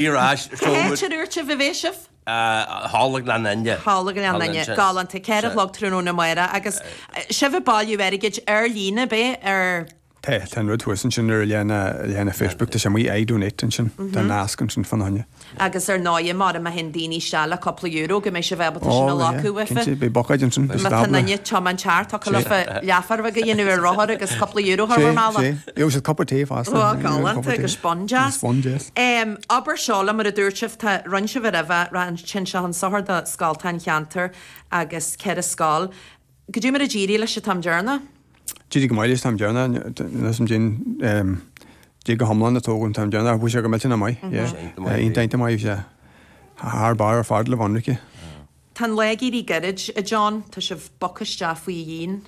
Iarr aisce, Cá seol muid. háit ar úirt sibh a bheidh sibh? Thall i nGleann Fhinne. Thall i nGleann Fhinne. Galánta. Ceithre a chlog tráthnóna amárach. Agus sibh ag bailiú airgid ar líne, ab é? Ar. Tá. Tá an rud thuas ansin ar an leathanach, leathanach Facebook, tá sé amuigh, iDonate ansin. Tá nasc ansin fána choinne. Agus ar ndóighe, má thig daoine isteach le cúpla euro, go mbeidh sibh ábalta sin a ghlacadh uafa. Ó, cinnte, beidh buicéid ansin. Má tá duine tiomáint thart, thiocfadh leofa leathuair a dhéanamh ar rothar agus cúpla euro a chur bhur mbealach. Gheobhaidh siad cupa tae fosta. Bhíodh galánta agus biondeas. Abair seo liom, mar a dúirt sibh, tá rinne sibh a raibh a, raibh an tinn seo chun sochair do scoltacha an cheantair agus ceithre scoil. Goidé mar a d'éirigh leis an t-am deireanach? D'éirigh go maith leis an t-am deireanach, nós am dinn, d'éirigh go hiomlán le tógáil an t-am deireanach, bhí sé go millteanach maith, yeah. Iontach maith bhí sé. Thar barr ar fad le Bhunraicse. Tá an lá ag éirí gairid, a John. Tá sibh bogtha isteach faoi dhíon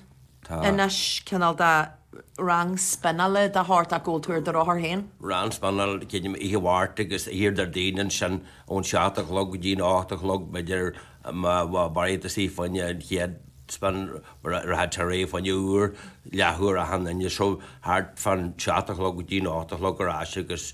Tá. anois, cineál de rang spionnála dá shórt ach go bhfuil tú ar do rothar féin. Rang spionnála, creidim, oíche Mháirt agus ar Déardaoin ansin ón seacht a chlog go dtí an ocht a chlog, b'fhéidir, má mhaireann tusa fá choinne an chéad spin, rachaidh tú ar aghaidh fá choinne uair, leathuair achan Aoine. So, thart fán seacht a chlog go dtí an ocht a chlog ar ais agus.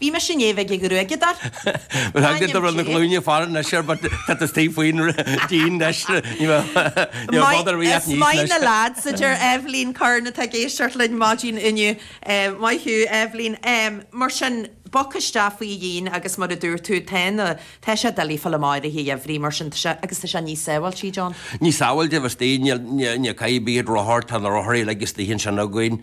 Bhí mise inné bheith ag gruaigeadar. Bhuel, thánga do rud na glúine fara anois air but tá tú istigh faoin díon anois, ní bhfodar bhí ach níos anois. Maith, is maith na leaids, a deir Eibhlín Curran atá ag éisteacht linn maidin inniu. Maith thú, Eibhlín. Mar sin, bog isteach faoi dhíon agus mar a dúirt tú, tá na, tá sé doiligh fáil amach oíche gheimhridh mar sin, tá sé, agus tá sé níos sábháilte, John. Níos sábháilte, bhí istigh, níl, ní chaithfidh bith iad rothar, tá na rothair uilig istigh ansin againn.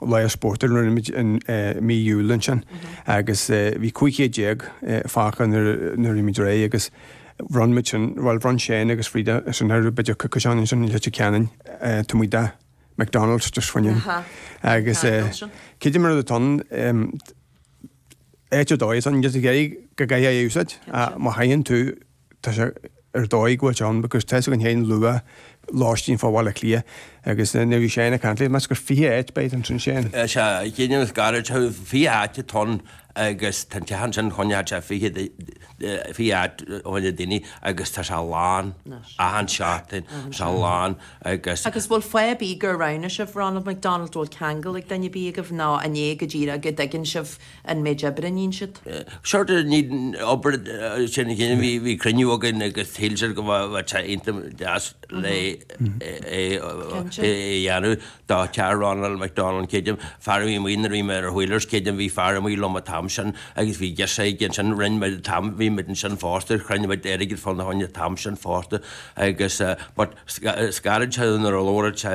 Lá spóirt a rinneamid in mí Iúil ansin agus bhí 15 céad fágtha nuair a bhíomid réidh agus bhronn muid sin, bhuel bhronn Shane agus Frida sin ar b'fhéidir coicís ó shin ansin in Leitir Ceanainn, tá muid a' McDonald's just when you agus goidé mar rud atá ann, áit ar dóigh is ann, go gcaithfidh a úsáid, má thuigeann tú, Tá sé ar dóigh go bhfuil sé ann agus tá's againn féin luach lóistín fá Bhaile Átha Cliath agus nuair a bhí Shane ag caint liom, measaim gur 20 áit a bheidh ansin, Shane? Is ea, ag déanamh is gairid, tá 20 áit atá ann agus tá an teach ansin coinneochaidh sé 20 de, 20 áit fá choinne daoine agus tá sé lán achan seachtain, tá sé lán agus. Agus bhfuil fáth ar bith gur roghnaigh sibh Ronald McDonald, bhfuil ceangal ag duine ar bith agaibh nó an é go díreach go dtuigeann sibh, an méid oibre a níonn siad. short of need obair sin a chéile bhí bhí cruinniú againn agus shíl siad go bhfuil bhfuil sé iontach deas le é é a dhéanamh do Chair Ronald McDonald an chéid fear a bhí amuigh nuair a bhí mé ar wheelers chéad am bhí fear amuigh liom an t-am sin agus bhí deis aige ansin rinne muid an t-am bhí muid ansin fosta chruinnigh muid airgead fána choinne an t-am sin fosta agus but scaradh sé nuair a labhair sé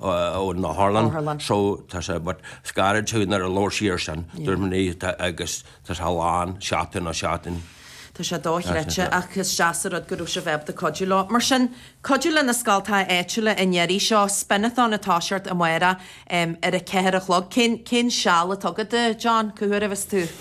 ón otharlann so tá sé but is gairid tú nuair a labhair sí ar sin dúirt mé ní tá agus tá sé lán seachtain á seachtain. Tá sé dochreidte ach is deas a rud go raibh sibh ábalta cuidiú leo. Mar sin, cuidiú leis na scoltacha áitiúla i ndeiridh seo spin-a-thon atá ar siúl amárach ar a ceathair a chlog. Cén seal a tugadh daoibh, John, cá huair a bheas tú?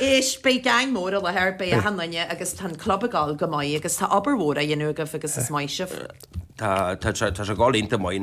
Anois, beidh geaing mór i láthair, beidh achan duine agus tá an club ag gabháil go maith agus tá obair mhór á dhéanamh agaibh agus is maith sibh. Tá sé ag gabháil iontach maith.